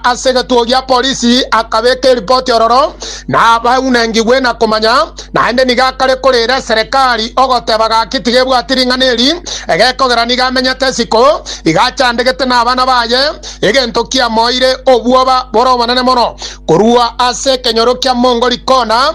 Ase egetuo gia polisi akabeka eripoti ororo nabaunengigwe na komanya, naende nigo akare korera eserekari ogoteba gaki tiga ebwati ring'ana eri, egekogera nigo amenyete isiko, iga achandegete nabana baye, egento kiamoeire obwoba bore obonene mono korwa ase ekenyoro kia Mongoli kona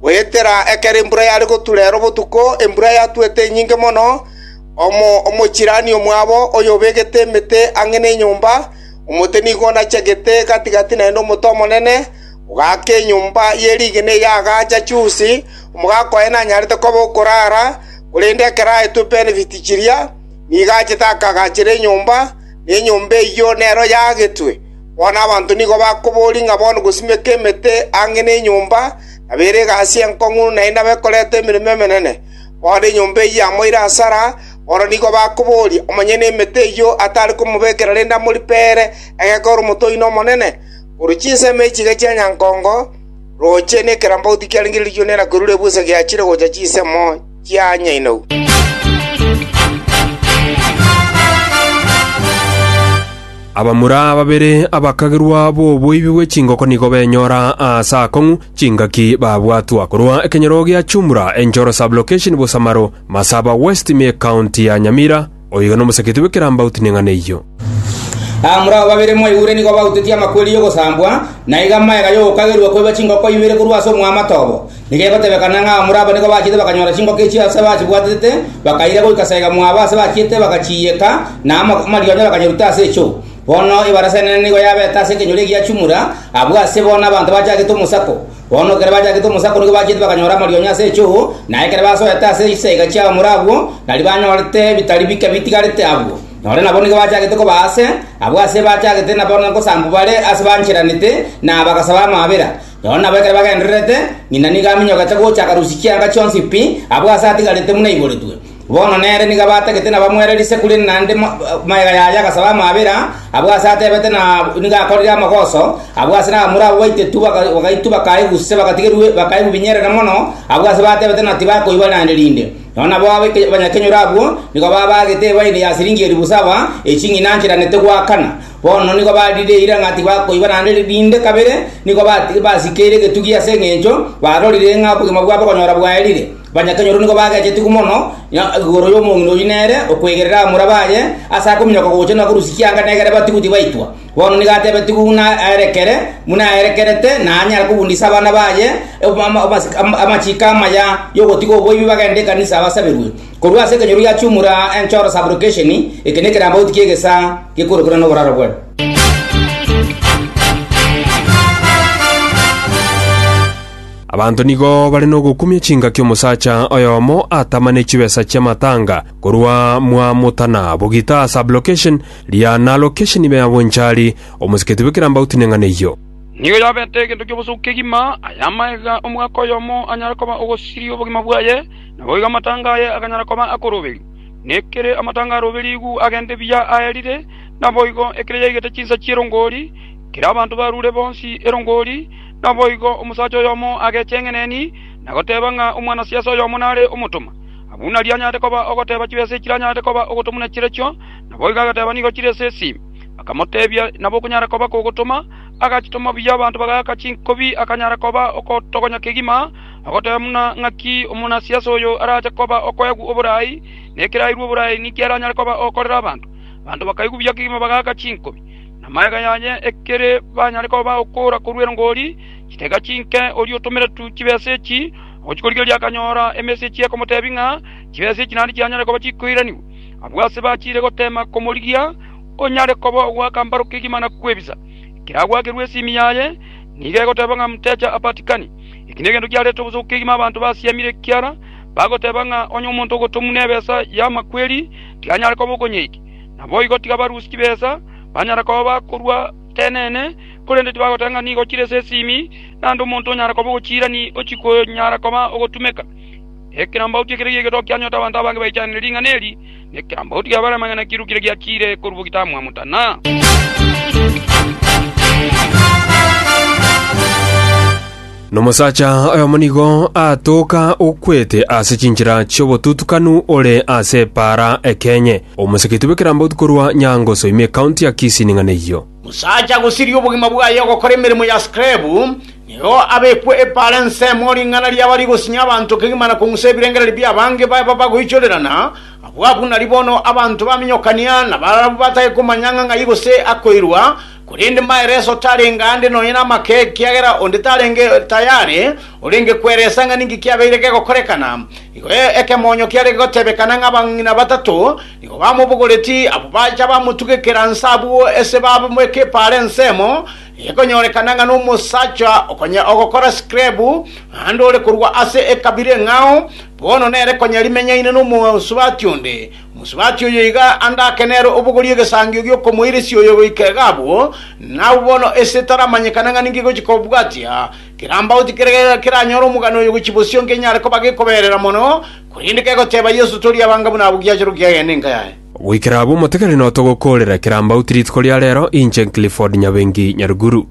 Goetera ekero embura yare gotura ero botuko, embura yatuete enyinge mono, omochirani omwabo oyobegete emete ang'e nenyomba, omote nigo onachegete gati‐gati naende omote omonene, ogaaka enyomba ye rigena eria agaacha chiusi. Omogaka oye nanyarete koba okoraara, korende ekero aetwe benefit chiria, nigo achete akagaachera enyomba, na enyomba eyio nero yaagetwe. Bono abanto nigo bakoboria ng'a bono gosimeka emete ang'e nenyomba nabeire egasi enkong'u naende abe koreta emeremo emenene. Bono enyomba eyio amo ere asara, bono nigo bakoboria, omonyene emete eyio atare komobekera rende amoripe ere egeka ore omotoini omonene? Korwa chinsemo echi iga chia nyankongo, roche nekerambauti kiarengererio nera kwerure ebusa giachire gocha chinsemo. kia Nyainou. Abamura babere abakagerwa b'oboibi bwe chingoko nigo benyora aase akong'u chingaki babwatwa korwa ekenyoro gia Chumra, Enchoro Sub-Location, Busamaro, Masaba West, me County ya Nyamira, Oiga nomosaketi bw'ekerambauti neng'ana eyio. Aa more abo babere mwaigure nigo bautetie amakweri y'ogosambwa, na iga amaega y'ogokagerwa koiba chingoko ibere korwa ase omwamato obo. Nigo egotebekana ng'a aa more aba nigo bachiete bakanyora chingoko echio ase bachibwaterete, bakaira goika saika mwabo ase bachiete bagachiiyeka, na amarionya bakanyeruta ase echoo. Bono ebarasa enene nigo yabete ase ekenyoro egiachumura, abwo ase bono abanto bachagete omosako. Bono ekero bachakete omosaku nigo bachete bakanyora amarionyo ase echoo, na ekero basoete ase chisaiga chi'abaamura abwo, tari banyorete ebitari bike bitigarete abwo. Nore nabo nigo bachakete koba aase, abwo aase bachagete nabo ngosambu bare aase bancheranete, na bagasaba amaabera. Noro nabo ekero bagendererete, ng'ina nigo aminyoka acha gocha akarusia chianga chionsi pi, abwo aase atigarete buna aiboretwe. Bono nere nigo abatagete na bamoera risaku rinde naende magega yaye agasaba amabera, abwo ase atebete na nigo akorire amagoso, abwo ase nabamura abwo baitetwe bagaitwa bakaegwa use bagatigerwa bakaegwa binyerere mono, abwo ase batebete na tibakoigwa naende rinde. Nonya nabo abanyakenyoro abwo nigo babagete ebaini ya siringi elifu saba ye ching'ina nchiranete goakana. Bono nigo barire eira ng'a tibakoigwa naende rinde kabere, nigo basikeire egetugi ase engencho barorire ng'a obogima bwabo okonyora bwaerire. Banyatonyoro nigo bagechetigwe mono igoro y'omong'ina oyio nere okwegerera abamura baye ase akominyoka gocha na korwa chianga negere batigwe tibaitwa. Bono nigo atebetigwe buna aerekere, buna aerekerete naanyare kobundisa abana baye amachiko amaya y'ogotiga oboibi bagende ekanisa basaberwe. Korwa ase ekenyoro gia chiumura enchoro Sublocation, eke nekerambauti ki'egesaa gekorokire noboraro bw'erio. Abanto nigo bare nogokumia chingaki omosacha oyomo atama ne chibesa chi'amatanga korwa mwa motana bogita sublocation, riana location ibe ya bonchari, omosiketi bwe kirambauti neng'ana eyio. Nigo yabete egento ki'obosooku kegima, aya amaega omogaka oyomo anyare koba ogosiria obogima bwaye, naboigo amatanga aye aganyara koba akoroberio. Na ekere amatanga aroberigwe agende buya aerire, naboigo ekere yaigete chinsa chi'erongori, ekere abanto barure bonsi erongori, Naboigo omosacha oyomo agecheng'eneni na goteba ng'a omwanasiase oyomo nare omotoma. Aye buna rianyarete koba ogoteba chibesa echi ranyarete koba ogotoma na chirechio, naboigo agateba nigo chire ase esi. Bakamotebia, Nabo okonyara koba kogotoma. Agachitoma buya abanto bagaaka chinkobi, akanyara koba okotogonya kegima, agoteba buna ng'aki omonasiase oyo arache koba okoegwa oboraai, na ekerairwe oboraai ninki aranyare koba ogokorera abanto. Abanto bakaigwa buya kegima bagaaka chinkobi. Namagega yaye ekere banyare koba okora korwa erongori, chitega chinke oria otomeretwe chibesa echi ogochikorigereria akanyora emesechi ekomotebia ng'a chibesa echi naende chianyare koba chikoiranigwa. Abwo ase bachiire goteema komorigia onyare koba ogoaka mbaro kegima na kwebisa. Ekero agwakerwe esimi yaye, nigo egoteba ng'a mteja apatikani. Eki negento giarete obosooku kegima abanto basiamire ekiara bagoteba ng'a onye omonto ogotomwa nebesa y'amakweri, tikanyare koba okonyeikia. Naboigo tiga barusie chibesa, banyara koba bakorua tenene, korende tibagoteba ng'a nigo ochire ase esimi, naende omonto onyare koba ogochiira ni ochikonyara koba ogotumeka. Ekerambaoti ekero giaigetoka kianyuota abanto abange baichanire ring'ana eri, nekerambaoti gia bare amang'ana kirukire giachiire korwa ogitaamwa motana. Nomosacha oyomo nigo aatoka okwete ase chinchera chi'obotutukanu ore ase epaara ekenye, omoseketi bw'ekerambauti korwa Nyangoso ime ekaunti ya Kisii ning'ana eyio. Mosacha gosiria obogima bwaye ogokora emeremo ya skrebu, nigo abekwe epaara ensemo ring'ana riaba rigosinya abanto kegima na kong'usa ebirengererio bi'abange baba bagoichorerana, abwo abwo nari bono abanto baminyokania, nabarabwo batake komanya ng'a ng'ai gose akoirwa, Korende maeleso tarenge aande nonya namake, ekiagera onde tarenge tayare orenge kweresa ng'a ninki kiabeire gegokorekana. Igo ekemonyo kiare gotebekana ng'a abang'ina batato nigo bamobogoreti, abwo bacha bamotugekera nse abwo ase bamobeka epaara ensemo, ekonyorekana ng'a nomosacha okonya ogokora sikrebu, naende ore korwa ase ekabira eng'ao, bono nere konya rimenyaine nomosubati onde. Mosubati oyo iga ande ake nere obogorie egesangio gi'okomoiresia oyo goika iga abwo, na abwo bono ense etaramanyekana ng'a ninki egochia kobwatia. Kerambauti kere gaiga keranyore omogano oyo gochia bosio nkenyare koba gekoberera mono, korende kegoteba, Yeso, toria abanga buna abwo giachorwe kiagende enka yaye. Goikera abwo motegereri notogokoorera kerambauti rituko ria rero, inche Clifford Nyabengi Nyaruguru.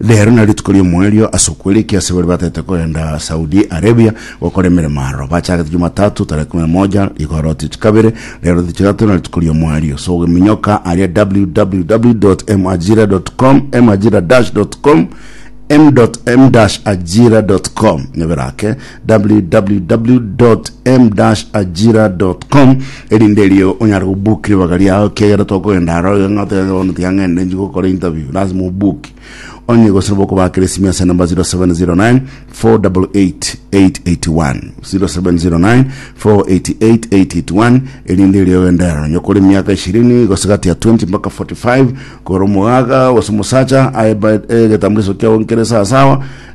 Rero na rituko ri'omoerio ase okwera ekiasi baria batete kogenda Saudi Arabia gokora emeremo aro. Bachagete Jumatatu tarehe kumi na moja rigoro tichi kabere rero tichi tato na rituko ri'omoerio. So ogeminyoka aria www.majira.com majira-com m.m-ajira.com nebero ake www.m-ajira.com erinde erio onyare kubuki ribaga riao kiagera tokogenda aro iga ng'a otebe bono tiga ng'ende nchi gokora interview lazima obuki onye gose nabo okobakera esimi ase namba 0709 488 881 0709 488 881 erinde erio ogende aro onye okore emiaka ishirini gose gati ya 20 mpaka 45 kore omogaga gose omosacha aye ba- eh, egetambuliso kiao nkere sawasawa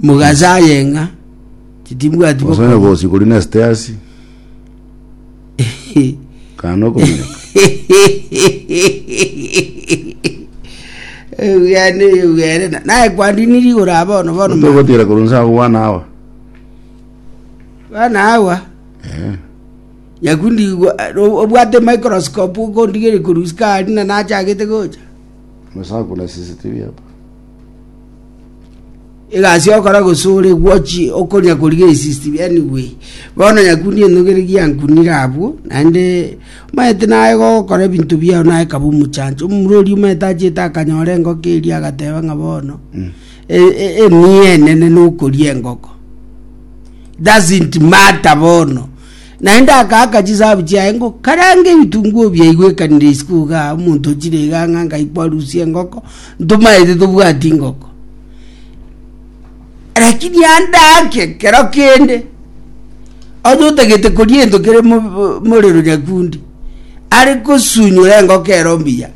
Mogacha aye ng'a titibwati Omosae bokonya. bosi kori nesete asi, kana okominyoka. Eugene Eugene na- naye kwandini rigoro aba bono bono mama. Togotira korwa nse agwo bwana awa. bana awa Eh. nyakundi gwa- o- obwate microscope okondigeria korwa sukari na nachagete gocha Omosae akona CCTV hapa. egasi okora gosore gwochi okoria koriga esisti yani gwe bono yakuni enogere giankunire abwo naende omanyete naye gokora ebinto biao naye kaba omochancho omomura oria omanyete achete akanyora engoko eria agateba ng'a bono e- e- emiya enene nokoria engoko doesn't matter bono Naende akaaka chisahabu chiaye ngo karange ebitunguo biaigwekanire isiko iga. Omonto ochire iga ng'a ngaikwa arusie engoko, ntomaete tobwati ngoko. Lakini andaake kero kende, onye otagete koria ento kere mo- morero nyakundi, are kosunyora engoko ero mbuya,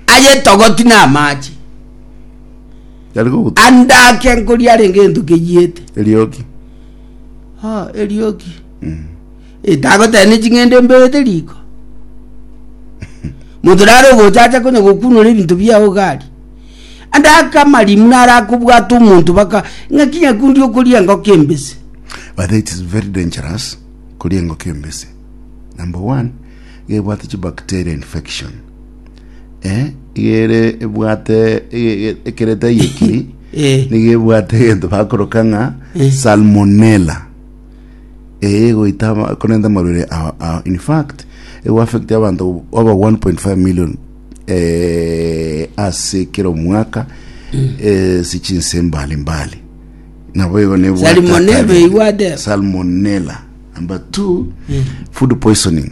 ayetogoti na amache, Yari goguta. andaake nkoria arenge ento keyiete. Eriogi. Ah, erioki. Eh, tagoteba ne ching'ende mberete riko. Monto nare ogocha acha konya gokunora ebinto biao gari. Ande aka amarimu nare akobwata omonto baka ng'aki nyakundi okoria engoko embese. but it is very dangerous koria engoko embese number one gebwate chibacteria infection eh, iga ere ebwate ege- ege- ekereta yeki Eh. niga ebwate egento bakoroka ng'a Eh. salmonella eye egoita ama- ekorenta amarwere a- a- in fact egoaffecti abanto over 1.5 million eh, ase kera omwaka eh, ase chinse mbali mbali nabo igo nebwate Salmonella akabere. eibwate? salmonella number two food poisoning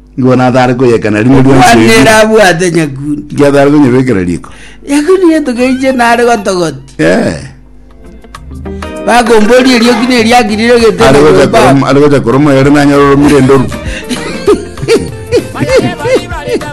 Nigo natare koyekana rimo rionsi Omwana ere erimo. abwate nyakundi. Ngiatare konyebekera riko. Nyakundi getogeiche nare gotogoti. Eh. Bakomboria erioki neriakirire gete Are gocha koroma, are gocha koroma yore nanyora oromire ndoru.